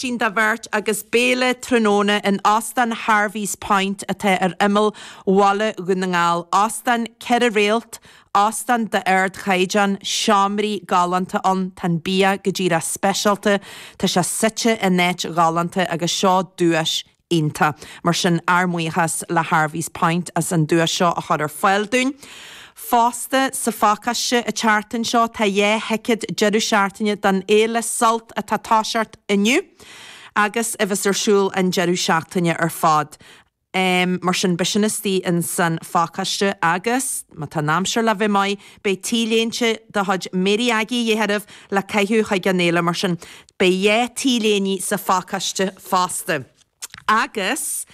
tín do bheirt agus béile tráthnóna in Óstán Harvey's Point atá ar imeall Bhaile Dhún na nGall. Óstán ceithre réalt, óstán d'ardchaighdeán, seomraí galánta ann, tá an bia go díreach speisialta, tá sé suite in áit ghalánta agus seo duais iontach. Mar sin, ár mbuíochas le Harvey's Point as an duais seo a chur ar fáil dúinn. Fosta, sa phacáiste an tseachtain seo, tá dhá thicéad deireadh seachtaine don fhéile Sult atá ag toiseacht inniu agus a bheas ar siúl an deireadh seachtaine ar fad. Mar sin, beidh sin istigh insan phacáiste agus, má tá an aimsir le bheith maith, beidh T-léinte de chuid Mary Aggie de dhíth oraibh le caitheamh chuig an fhéile. Mar sin, Beidh dhá t-léine sa phacáiste fosta agus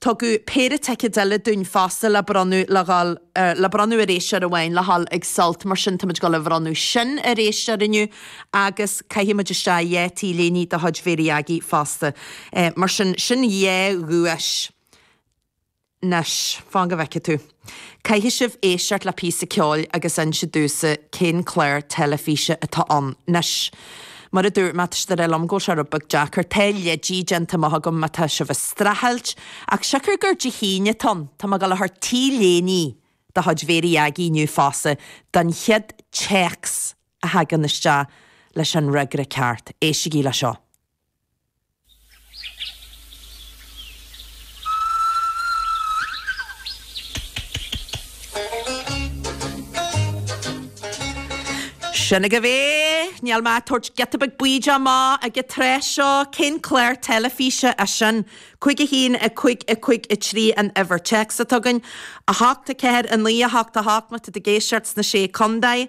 tugadh péire ticéad eile dúinn fosta le bronnadh le dhul, er, le bronnadh ar éisteoir amháin le dhul ag Sult mar sin tá muid ag dul a bhronnadh sin ar éisteoir inniu agus caithfidh muid isteach dhá t-léine de chuid Mhary Aggie fosta. Eh, mar sin, sin dhá dhuais. Anois, fan go bhfeice tú. Caithfidh sibh éisteacht le píosa ceoil agus inse domhsa cén clár teilifíse atá ann. Anois, mar a dúirt mé, tá siad ag rá liom go bhfuil sé rud beag deacair. Tá leidí déanta amach agam má tá sibh ag streachailt, ach siocair gur Dé hAoine atá ann, tá mé ag dul a thabhairt T-léine de chuid Mhary Aggie inniu fosta don chéad téacs a thagann isteach leis an fhreagra ceart. Éistigí le seo. Sin agaibh é! Níl mé ag tabhairt giota beag bídeach amach ag an tráth seo, cén clár teilifíse é sin? Cúig a haon, a cúig, a cúig a trí an uimhir téacs atá againn. A hocht, a ceathair, a naoi, a hocht, a hocht, má tá tú ag éisteacht sna Sé Contae.